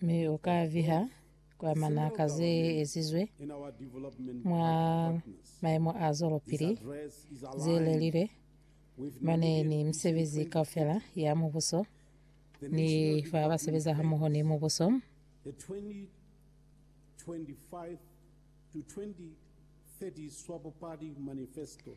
mi u ka viha kwa manaka ze ezizwe mwa maemo a zwelopili ze lelilwe mane ni misebezi kaufela ya mubuso ni fa ba sebeza hamoho ni mubuso. The 2025 to 2030 Swapo Party Manifesto.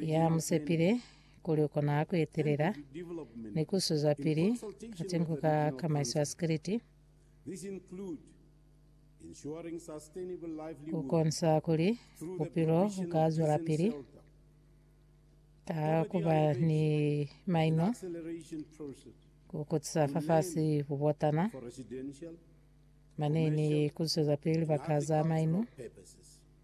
ya mu sepile kuli u kona ku etelela ni ku sizwapili ka tinko ka kamaiso ya sikiliti, ku konisa kuli bupilo bu ka zwelapili ka ku ba ni maino, ku kutisa fafasi bubotana, mane ni ku zwezapili libaka za maino.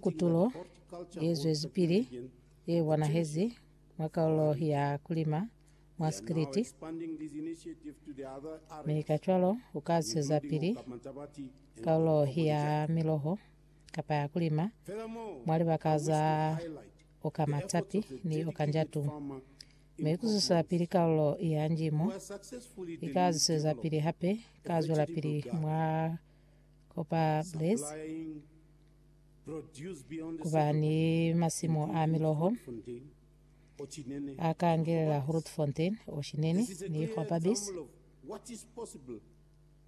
Kutulo yezwezipili yebonahezi mwa kalulo ya kulima mwa Sikiliti, mi kacwalo ukazwisezapili kalulo ya miloho kapa ya kulima mwa libaka za oka matapi ni oka njatu. Mi kuzwisezapili kalulo ya njimo ikazwisezapili hape kazwelapili mwa Kopa Blaise kuba ni masimu a miloho akangelela Grootfontein Oshinene ni Kopa Base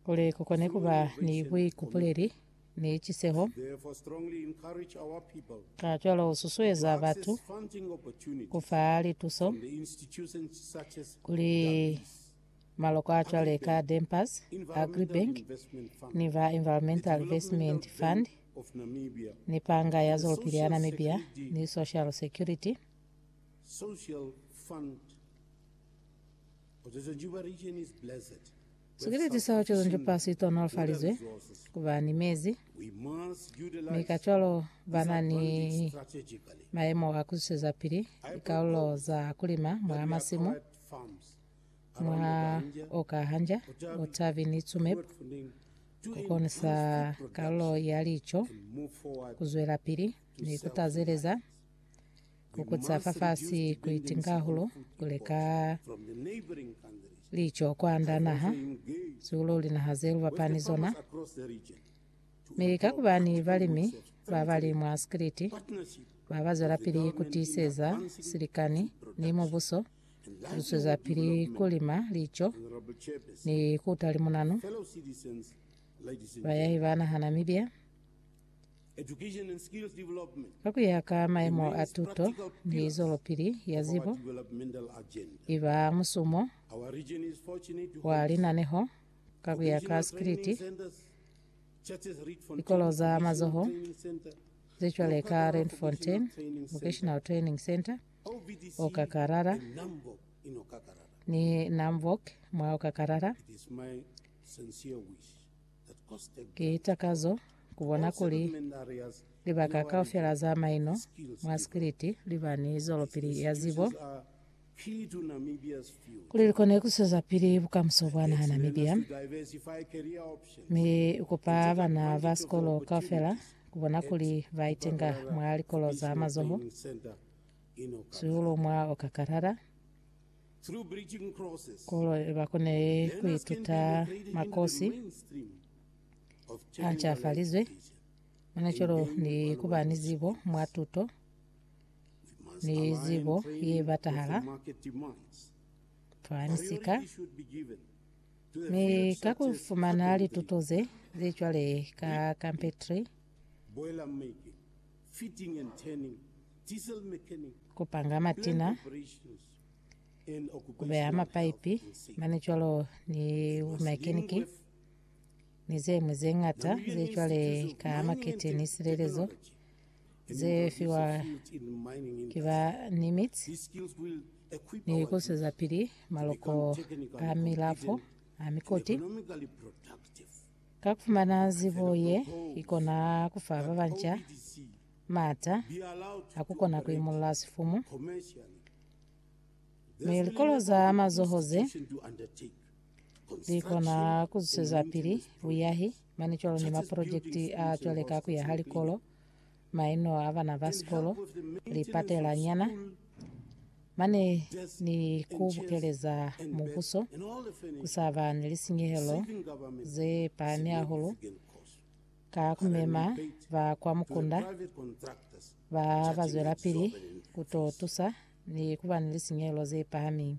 kuli kukone kuba ni buikupuleli ni ciseho. Kacwalo ususueza batu kufa lituso kuli Maloko a cwale ka Dempers Agribank ni ba Environmental Investment Fund ni Panga ya Zwelopili ya Namibia ni Social Security Sikiliti sa Ocean Jupa si tonolofalizwe ku ba ni mezi, mi kacwalo ba na ni mayemo a ku zwisezapili likalulo za kulima mwa masimu mwa oka hanja utabi ni tsumeb ku konisa kalulo ya lico ku zwelapili ni ku tazeleza ku kutsa fafasi ku itingahulu ku leka lico kwanda naha siulo linaha ze lubapani zona mi ka kubani balimi ba bali mwa sikiliti ba ba zwelapili ku tiiseza silikani ni mubuso Lu zwezapili ku lima lico ni ku ta limunanu bayahi ba naha Namibia ka ku ya ka maemo a tuto ni zwelopili ya zibo i ba musumo wa linaneho ka ku ya ka sikiliti likolo za mazoho ze cwale ka Randfontein Vocational Training Centre o kakalala, ni nambok mwa o kakalala. Ki takazo kubona kuli libaka kaufela za maino mwa sikiliti liba ni zwelopili ya zibo, kuli likone kuswezapili bukamuso bwa naha Namibia. Mi kupa bana ba sikolo kaufela ku bona kuli ba itenga mwa likolo za mazoho, siulu mwa oka kalala, kolo ba kone ku ituta makosi a ncafalizwe, mane cwalo ni ku ba ni zibo mwa tuto ni zibo ye batahala fa misika. Mi ka ku fumana lituto ze li cwale ka Carpentry, ku panga matina, ku beha mapaipi, mane cwalo ni bumekaniki, ni ze ñwi ze ñata ze cwale ka Marketing ni Silelezo, ze fiwa ki ba ni mitsi ni ku swezapili maloko a milafo a mikoti. Ka ku fumana zibo ye ikona ku fa ba banca maata a ku kona ku imulla sifumu mi likolo za mazoho ze li kona ku zwezapili buyahi. Mane cwalo ni mapolojekiti a cwale ka kuya ha likolo, maino a bana ba sikolo, lipatela nyana, mane ni ku bukeleza mubuso, ku sa ba ni lisinyehelo ze pahami hahulu, ka ku mema ba kwa mukunda ba ba zwelapili ku to tusa ni ku ba ni lisinyehelo ze pahami.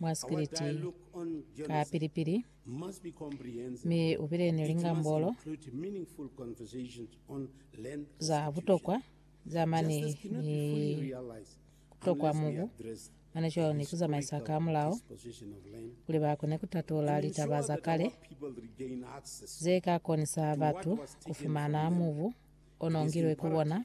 mwa spiliti ka pili-pili, mi u bile ni lingambolo za butokwa za mane ni kutokwa mubu mane cwalo ni kuzamaisa ka mulao kuli ba kone kutatula litaba za kale ze ka konisa batu kufumana mubu o nongilwe ku bona.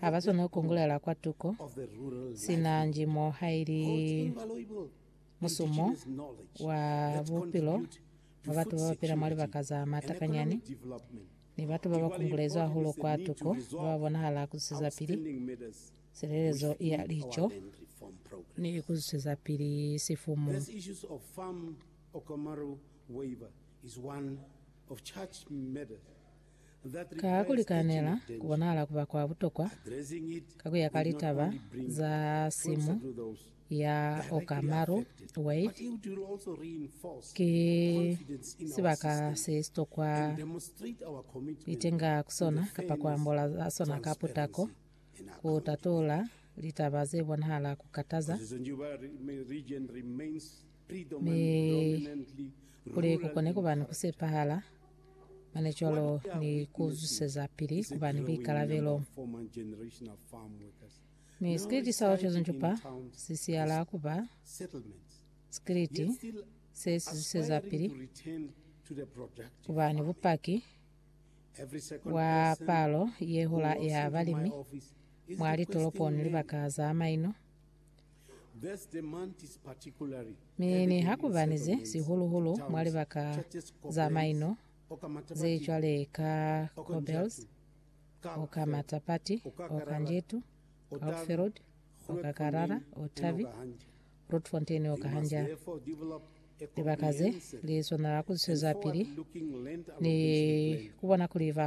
ha ba swana ku kongolela kwa tuko, sina nji mo ha ili musumo wa bupilo wa batu ba ba pila mwa libaka za matakanyani ni batu ba ba kungulezwi hahulu kwa tuko ba ba bonahala ku zusezapili silelezo ya lico ni ku zusezapili sifumu. These issues of farm Okomaru waiver is one of church matters Ka ku likanela, ku bonahala ku ba kwa butokwa ka ku ya ka litaba za simu ya Okamaru Wade, ki sibaka se sitokwa itenga ku sona kapa ku ambola za sona ka putako ku tatula litaba ze bonahala ku kataza, mi kuli ku kone ku ba ni ku sepahala. mane cwalo ni ku zuseza pili ku ba ni buikalabelo. Mi sikiliti sa Ocean Jopa si siyala ku ba sikiliti se si zuseza pili ku ba ni bupaki bwa palo ye hula ya balimi mwa litolopo ni libaka za maino. These demands particularly Mi niha ku ba ni ze, sihulu-hulu mwa libaka za maino ze cwale ka Korbels, oka Matapati, oka Njetu, Houtfield, oka Karara, Otavi, Grootfontein, oka Hanja, libaka ze li swanela ku zwezapili ni ku bona kuli ba